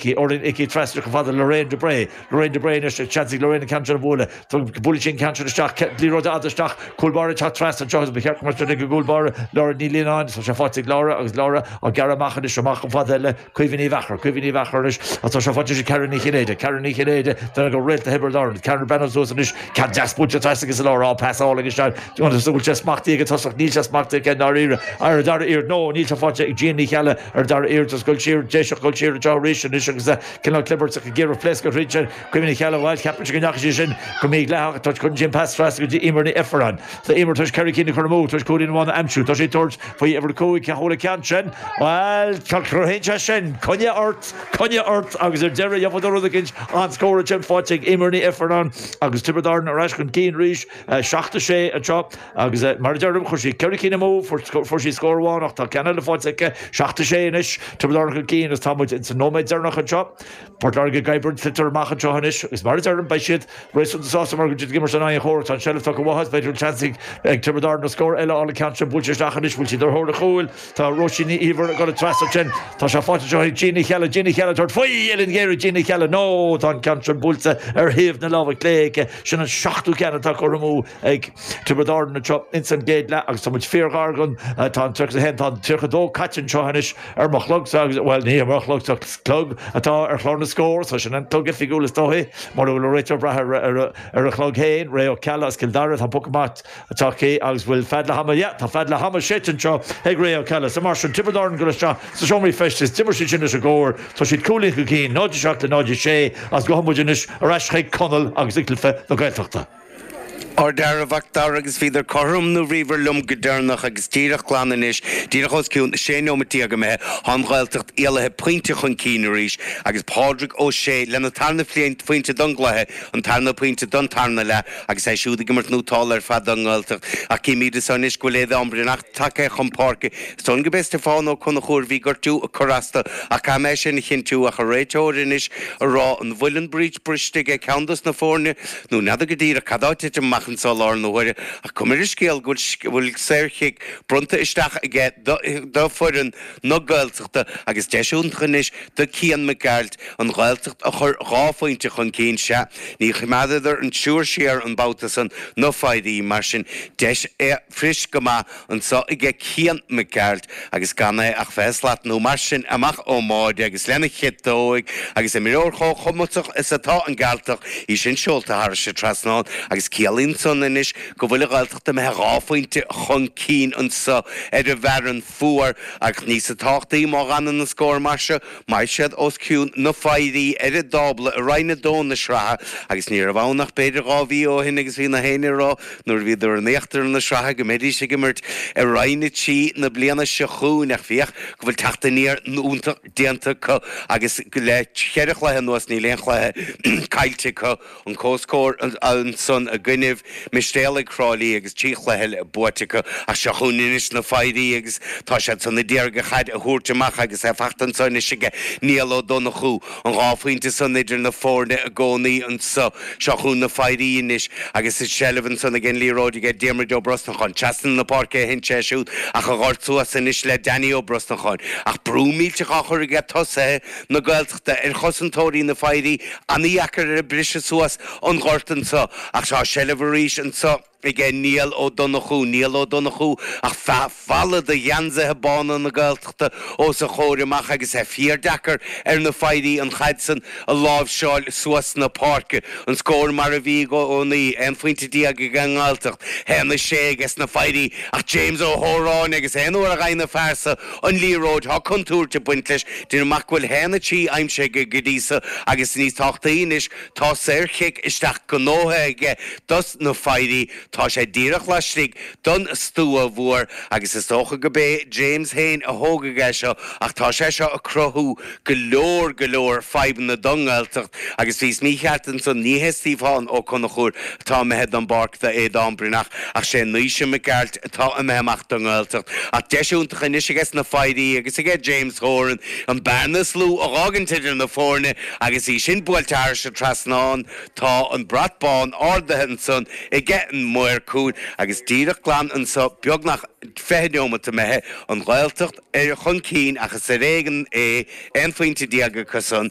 Cé orainn é? Cé trasna chomh fada? Lorraine de Brae. Lorraine de Brae anois. An seans ag Lorraine an ceann sin a bhualadh? Tugann, buaileann sí an ceann sin isteach. Ceith, liathróid fhada isteach. Cúl báire ag teacht trasna anseo agus ba cheart go mbeadh sin ag an gcúl báire, Laura Ní Lionnáin. Tá sé faighte ag Laura agus Laura á gearradh amach anois. Amach chomh fada le Caoimhe Ní Mheachair. Caoimhe Ní Mheachair anois agus tá sé faighte anois ag Karen Ní Chinnéide. Karen Ní Chinnéide, duine de réalta Thiobraid Árann. Karen ag breathnú suas anois. Ceann deas buailte trasna aici sa lár. Á, pas álainn isteach. Cionn is go bhfuil sé smachtaithe ag an tosaí. Níl sé smachtaithe aici i ndáiríre. Ar an dara iarraidh, no, níl sé faighte ag Jean Ní Cheallaigh. ar dara iarracht, dul siar, d'éisteacht, dul siar anseo arís, anois agus a' cineál clibirtseach ag iarraidh phléasc a throid i gcoinne a chéile, bhail, cheapaimse go ndeachaigh sé sin go mídhleathach, toisc chuir an t-im pas trasna go dtí Eimear Ní Ifearnáin, tá Eimear tar éis ceithre cinn a chur amú tar éis cúilín amháin a aimsiú, tá sí ag tabhairt faoi uimhir a cúig, cá bhfuil an ceann sin, bhail, cruthaíonn sé sin coinnigh ort, coinnigh ort agus ar deireadh gheobhaidh tú rud eicínt an-scór ansin faighte ag Eimear Ní Ifearnáin agus Tiobraid Árann ar ais chun cinn arís, 7, 6, anseo. Agus mar a deirim, chuir sí ceithre cinn amú, fuair sí scór amháin ach tá ceann eile faighte aici, seacht is sé anois, Tiobraid Árann chun cinn agus tá muid ins an nóiméad deireanach anseo. Port Láirge ag oibriú an sliotar amach anseo anois agus mar a deirim, beidh siad réasúnta sásta mar go dtig imirt in aghaidh an chóir ach tá an seilbh tugtha uathu agus b'fhéidir an seans ag Tiobraid Árann scór eile a fháil an ceann sin buailte isteach anois, bhfuil siad ar thóir an chúil, tá Róisín Ní Íomhair ag dul ag trasnú ansin, tá sé faighte anseo ag Jean Ní Cheallaigh, Jean Ní Cheallaigh ag tabhairt faoi, uillinn ghéar ag Jean Ní Cheallaigh, no, tá an ceann sin buailte ar thaobh na láimhe clé aici, sin an seachtú ceann atá curtha amú. ag Tiobraid Árann anseo ins an gcéad leath agus tá muid fíorghar don tá an 31 tá an 32 caite anseo anois ar mo chlogsa agus bhuel ní ar mo chlogsa an clog atá ar chlár na scór so sin an clog oifigiúil is dóigh mura bhfuil an réiteoir ag breathnú ar ar ar a chlog féin Ray Ó Ceallaigh as Cill Dara tá puc amach tógtha aici agus bhfuil fead leath ama yeah tá fead leath ama séidte anseo ag Ray Ó Ceallaigh so mar sin Tiobraid Árann ag gabháil chuig na seomraí feistis d'imir siadsan leis an gcóir tá siad cúilín chun cinn 0-7 le 0-6 is gabhfaidh muid anois ar ais chuig Conall agus ag cluiche na Gaeltachta. Ardfhear a Mhac Dara, agus bhíodar cothrom nuair a bhíobhair liom go deireanach agus díreach glan anois, díreach os cionn sé neomat déag imithe, tá an Ghaeltacht éalaithe pointe chun cinn arís agus Pádraig Ó Sé lena tarna phointe don gcluiche, an tarna pointe don tarna leath agus é siúd ag imirt nótálta ar fad don nGaeltacht. Ach címíd anso anois go bhfuil Aodán Breathnach tagtha chun páirce. Is dóigh gurb é Stiofán Ó Conchúir a bhí gortú ag cur as do ach caithfidh mé é sin a chinntiú ach an réiteoir anois ag rá an bhfuil an breach briste aige ag ceann dos na foirne nó n'fheadar go díreach cad atá ag titim amach anso i lár na huaire ach cuma ar an scéal go bhfuil saor-chic bronnta isteach aige do foireann na Gaeltachta agus deis iontach anois do Cian Mac Gearailt an Ghaeltacht a chur dhá phointe chun cinn. Sea, ní choimeádeadar an triúr siar an babhta san, na Foidhrí, mar sin deis fuirist go maith. anso aige Cian Mac Gearailt agus gan é ach fiche slat nó mar sin amach ón mbáide agus lena chiotóig agus imreoir chomh cumasach is atá an Gearaltach í sin seolta thairis an trasnán agus ciallaíonn san anois go bhfuil an Ghaeltacht imithe dhá phointe chun cinn anso ar an bhFearann Fuar ach níos tábhachtaí má dh'fhanann an scór mar seo Mar tá siad os cionn na Foidhrí ar an dtábla i Roinn 2 na sraithe agus ní raibh ann ach b'fhéidir dhá mhí ó shin agus bhí na héinne ag rá nuair a bhíodar in íochtar na sraithe go mbeidís ag imirt i Roinn 3 na bliana seo chugainn ach féach go bhfuil teacht aniar iontach déanta acu agus le ceithre chluiche anuas níl aon chluiche caillte acu An comhscór ansan i gcoinnibh Mistéalaigh Thrá Lí agus trí chluiche buaite acu. Ach seo chugainn anois na Foidhrí agus tá siad san a d'iarraidh an chaid a thabhairt amach agus é fachta anso anois aige Niall Ó Donnchú. An dhá phointe san idir na foirne i gcónaí anso. Seo chugainn na Foidhrí anois agus seilbh ansan ag an liathróid aige Diarmuid Ó Brosnacháin. Trasna na páirce a théann sé siúd ach an ghort suas anois le Danny Ó Brosnacháin. Ach brú millteach á chur aige tosaithe na Gaeltachta. Ar chosantóirí na Foidhrí an-dheacair orthu briseadh suas an ghort anso ach tá seilbh arís anso ag Niall Ó Donnchú, Niall Ó Donnchú ach falla do gheansaithe bána na Gaeltachta os a chomhair amach agus é fíordheacair ar na Foidhrí an chaid san a láimhseáil suas na páirce. An scór mar a bhí i gcónaí, aon phointe déag ag an nGaeltacht, haon a sé ag na Foidhrí ach James Ó hÓráin agus aon uair a dh'fhaigheann an fear so An liathróid, thá contúirt ag baint leis, déanaim amach go bhfuil haon a trí aimsithe aige go dtí so agus níos tábhachtaí anois tá saor chic isteach gnóthaithe aige dos na Foidhrí, tá sé díreach laistigh don stua mhór agus is dócha gurb é James féin a thógfaidh é seo ach tá sé seo a' cruthú go leor, go leor fadhbanna don nGaeltacht agus bhíos mícheart anso ní hé Stiofán Ó Conchúir atá imithe don bpáirc do Aodán Breathnach ach sé Naoise Mac Atá imithe amach don nGaeltacht. Ach deis iontach anois aiges na Foidhrí agus aige James Horan an bearna is lú a dh'fhágaint idir na foirne agus í sin buailte thairis an trasnán. Tá an brat bán ardaithe ansan aige an maor cúil agus díreach glan anso beagnach fiche neomat imithe, An Ghaeltacht chun cinn ach is ar éigean é aon phointe déag acu san.